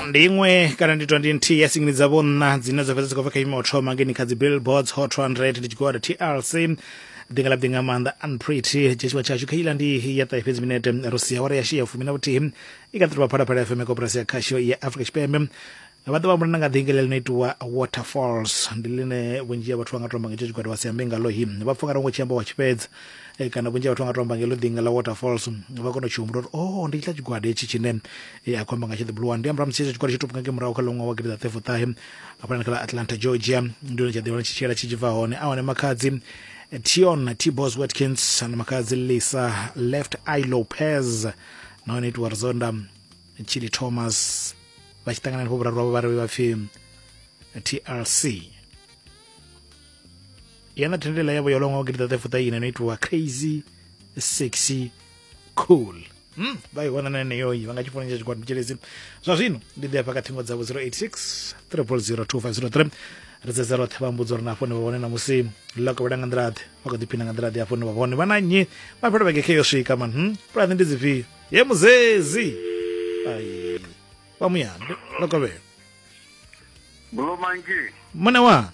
ndi iṅwe kana ndi 20 nthihi ya singini dzavho nṋa dzine dza fhedza dzi khou bva kha imo thoma ngeni kha dzi billboards hot 200 ndi tshigwada tlc dinga la dinga maanḓa unpretty tshitshavha tshashu kha ila ndi ya ṱahe fhedzi minete ro sia awara ya shia fumi na vhuthihi i kha ḓirobha phalaphala fm koporasi ya khasho ya afrika tshipembe vha ḓo vhambulana nga ḓinga ḽi no itiwa waterfalls ndi ḽine vhunzhi ha vhathu vha nga tomba nga itsho tshigwada vha si ambe ngalo hi vha pfha nga rongo tshi amba wa tshifhedza e, kana vhunzhi ha vhathu vha nga to amba ngelo ḓinga ḽa waterfalls vha kona u tshi humbula uri o oh, ndi tshila tshigwada hetshi tshine e, a khou amba nga tshi ḓibuluwani ndi ambura musi hetsho tshigwada tshi to pungake murahu kha ḽo ṅwaha wa gidi ḓa thefo ṱahe hafhanani kha ḽa atlanta georgia ndi hone tsha ḓivha tshi tshiela tshi tshi bva hone a hone makhadzi tion tibos watkins na makhadzi lisa left i lopez nahone itiwa rizonda chili thomas vha tshi ṱangana henefho vhuraru vhavho vha ri vha pfi trc yana thendelela yavo yo longa gidi tate futa ine no itiwa crazy sexy cool Mm, vha i wana na yeneyoyi vha nga tshi founela tshikwadi mutshelezi zwa zwino ndi ḓi afha kha thingo dzavho 086 3002503 ri dzedza roṱhe vha mbudzo ri na afho ni vha vhone na musi ḽa kovhela nga nḓilaḓe vha kho ḓiphina nga nḓilaḓe afho ni vha vhone vha na nnyi mafhelo vhege khe yo swika man hm pulani ndi dzifhio ye muzezi ai vha muyambe ḽa kovhela Blue Monkey. mune wanga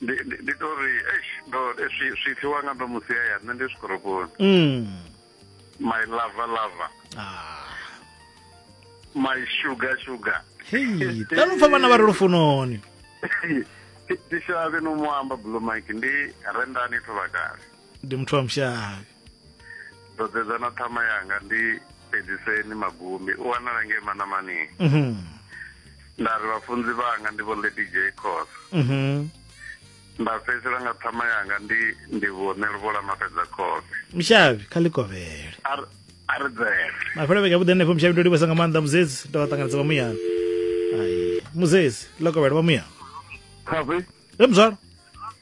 ndi ndi- ndi to ri eish ndo swi swi fiwa nga ndo musi ya ya nṋe ndi zwikorokoni mm. my lover lover ah. my sugar sugar hei tanupfa vhana vha re lufunoni tishavhe no mu amba blue mike ndi rendani thovhakale ndi muthu wa mushavhi ndo dzedza na ṱhama yanga ndi fhedziseni magumi u wanala ngei manamani mhm. nda ri vhafunzi vhanga ndi vho lady j cos mhm. nda fhedzisela nga ṱhama yanga ndi ndi vhone luvhola mafhedza khove mushavhi kha likovhele a ri dzele mafhelo vhege vhuḓi henefho mushavhi ndo livhesa nga maanḓa muzedzi ndo vha ṱanganedza vha muyana ai muzedzi likovhele vha muyana khavi e muzwalo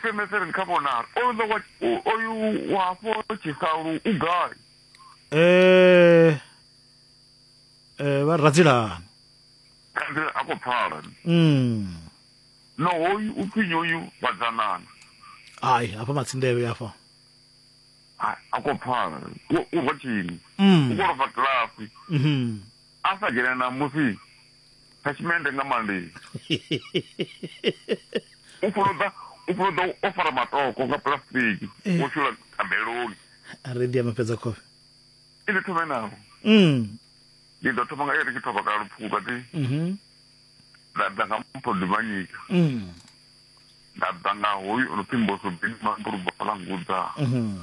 sms ri ni kha vhonala oyu wa oyu wa hafho tshisalu u gai eh eh vha radzilani kanzi a khou pfala mm no hoyu u pfi nyoyu vhadzanana hayi hafha matsindevhe hafha a khou pfala u rotshini mm u khou rofa kilafi mhm a sa dzhene na musi thashimende nga mandei u fuloḓa u fuloḓa o fara matoko nga pulasitiki eh. wo shula thabeloni a ri ḓi amafhedza khofhe i ndi thome naho mm. ndi ḓo thoma nga iri tshi thoma kana lupfuku kati mhm. nda ḓa nga mpho ndimanyika mm. nda ḓa nga hoyu o no pfhi mbosobini mambulubalangudza mhm.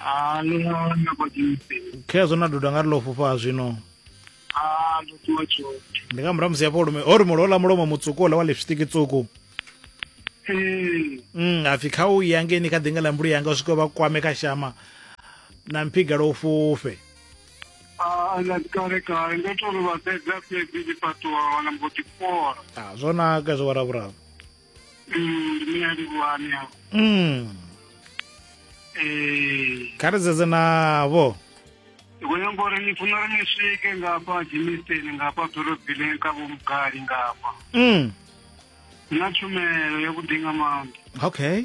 Ah, ni nga na kwa kimpeni. khezwo na duda nga ri ḽo fhufha zwino Ah, ndo tuwa tshoṱhe. ndi nga murahu musi hafho lume ho ri mulo ḽa mulomo mutsuku ola wa lipstick tsuku Eh, mm hapfi kha u ya ngeni kha ḓinga ḽa mbulu yanga u swika vha kwame kha shama na mphiga lwo fhufhe ah, na kale kale ndo to ri vha fhedza fhedzi tshifhaṱuwa wana mbo ḓi fora. ah zwo naka zwo waravhuravu ndi mina livhuwani apo mm. ee kha ri zedze navho ndi khou nyanga uri ni funa uri ni swike ngafha dzimisteni ngafha ḓorobileni kha vhomugari ngafha mm. na tshumelo yavhuḓi nga maanḓa okay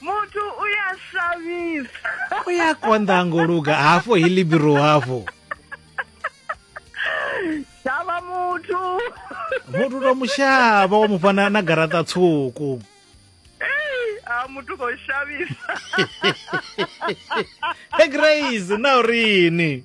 muthu u ya shavhisa u ya konḓa ngo luga hafho hi libiro hafho shavha muthu muthu to mushavha wa mufha na, na garaṱa tswuku a muthu khou shavhisa e grace na urini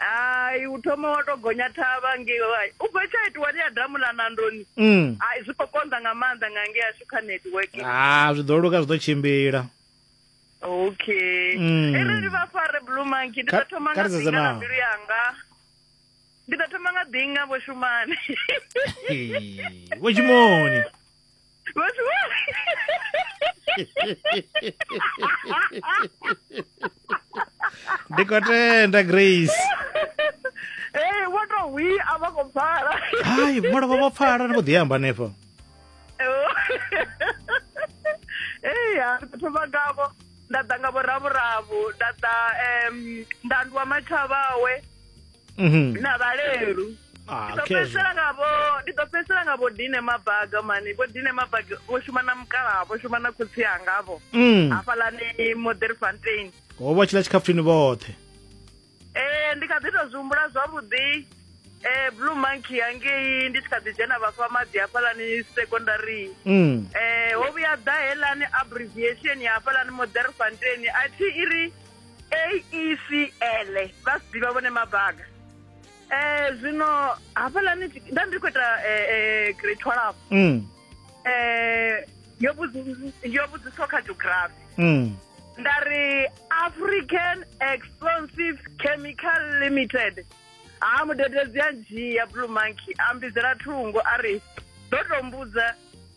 hai u thoma wa to gonya thavha ngei hai u bva tsha itiwa ri ya damu ḽa nandoni mm. hai zwi khou konḓa nga maanḓa nga ngei ashu kha network ha ah, zwi ḓo luka zwi ḓo tshimbila okay mm. e reli vha fare blue monkey ndi ḓo thoma nga ḓinga na mbilu yanga ndi ḓo thoma nga ḓinga vho shumane vho shumoni ndi khou tenda grace ee vho to hwi a vha khou pfala hai mulovha vho pfala ni vho ḓi amba hanefho ee ya thoma ngavho nda ḓa nga vhoravhoravho nda ḓa um nda nduwa mathavhawe Mhm. na vhalelu Ah, ndi ḓo okay. fhedzisela nga vho ndi ḓo fhedzisela nga vho dine mabaga mani vho dine mabaga vho shuma na mukalaha vho shuma na khotsi anga avho Mm. hafhalani moderfontein Ho vha tshila tshikhafuthini vhoṱhe. Eh ndi kha ḓi tou zwihumbula zwavhuḓi eh blue monkey yangei ndi tshi kha ḓi dzhena vhafha maḓi hafhalani secondary Mm. eh ho vhuya ḓa helani abbreviation ya hafhalani moderfontein a thi iri AECL vha si ḓivha vhone mabaga eh zwino hafhaḽani nda ndi khou ita eh, eh, grade 12 mm. eh yo vhudzi- yo vhudziswa kha geography mm. nda ri african explosive chemical limited ha mudededzi a dzhia blue monkey a mbidzela thungo a ri ḓo to mbudza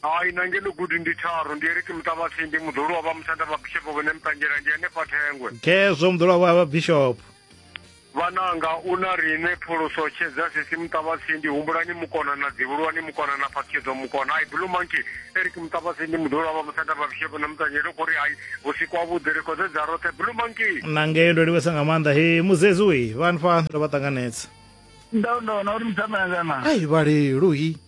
Hai, na ngeno gudi ndi tharu, ndi Eric Muṱavhatsindi, muḓolo wa vha muthanda vha Bishop vhone Mutangela, ndi henefha Thengwe. Khezwo muḓolo wa vha Bishop. Vhananga u na riṋe phuluso tshedza sisi Muṱavhatsindi, humbulani mukona na dzivhulwani mukona na phatshedzo mukona. Hai, Blue Monkey, Eric Muṱavhatsindi, muḓolo wa vha muthanda vha Bishop na Mutangela, u khou ri hai, vhusiku ha vhuḓi, ri khou dzedza roṱhe, Blue Monkey. Na ngeno ndo livhesa nga maanḓa he muzezi ui vha nfha ndo vha ṱanganedza. Ndau ndona uri muthamela kana. Ai, vhaleluhi.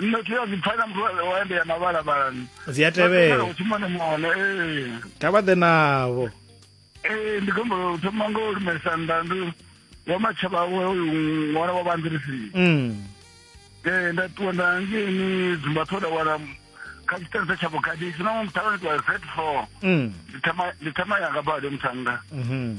nṋe thi a zwi pfa na muthu wa ende ya mavhalavhala zwi a tevhela u thoma nemone ee kha vha ḓe navho ee ndi khombo u thoma ngo u lumelisa nnḓa ndi wa matshaba awe uyu ṅwana wa vhanḓirisi mm. ee nda ṱuwa nda ngeni dzumba thoda wala kha tshiṱense tsha vhukati si na muthavha ndi ṱuwa z four mm. ndi thama yanga bade muthannga mhm.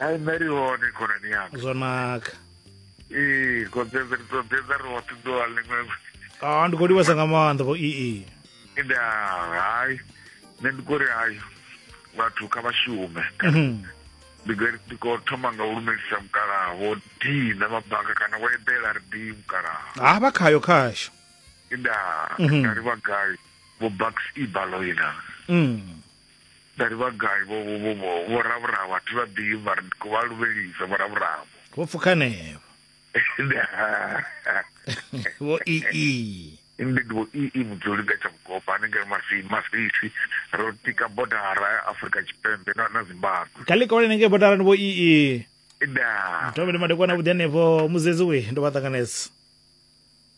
ai nṋe ri hone khonani yanga zwo naka ee kodzedze ri ṱoḓedza ri hoṱhe ḓuvha ḽiṅwe a ah, ndi khou livhesa nga maanḓa vho ee nda hai nṋe ndi khou ri hayo vhathu kha vha shume mhm. ndi ndi khou thoma nga u lumelisa mukalaha vho dina mabaka kana wo eḓela ri di mukalaha ha ah, vha khayo khasho nda mhm. nga ri vha gai vho bucks ibaloina mm. Nda ri, Vha gai vho, vho, vho, vho, vho Ravhuravo? A thi vha ḓivhi, mara ndi khou vha luvhelisa, vho Ravhuravo. Vho pfuka henevho. Vho ii. Ndi ndi vho ii mudzuli nga tsha vhugoba hanengei Masi, Masisi. Ro tika bodara ya Afrika Tshipembe na, na Zimbabwe. Kha ḽikole henengei bodarani vho ii. Ndaa. Thome ndi madekwana vhuḓi henefho, muzedzi we, ndo vha ṱanganedza.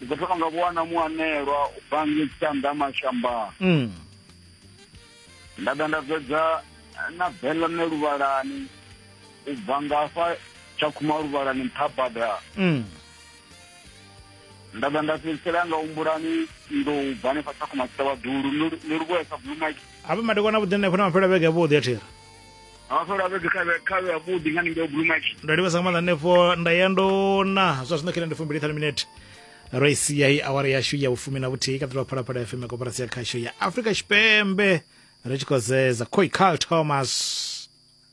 ndi khou thoma nga vho wana muanelwa u bva ngei tshanḓa mashambani mm. nda ḓa nda fhedza na belone luvhalani u bva ngafha tsha khuma luvhalani nṱha bada mm. nda ḓa nda fhedzisela nga humbulani ndo u bva hanefha tsha khuma tshitavhaḓulu ni luvhuesa blue mike hafha madekwana vhuḓi hanefho na mafhela vhege vhuḓi a thira hafho ra vhedzi kha kha vhuḓi nga ninge blue market ndo livhesa nga maanḓa hanefho nda ya ndo na zwa zwino khe ndi fumbili thanu minete ro i sia i awara yashu ya vhufumi na vhuthihi kaḓelwa phalaphala fm ya koporasi ya khasho ya afrika tshipembe ri tshi khou zeza khoi carl thomas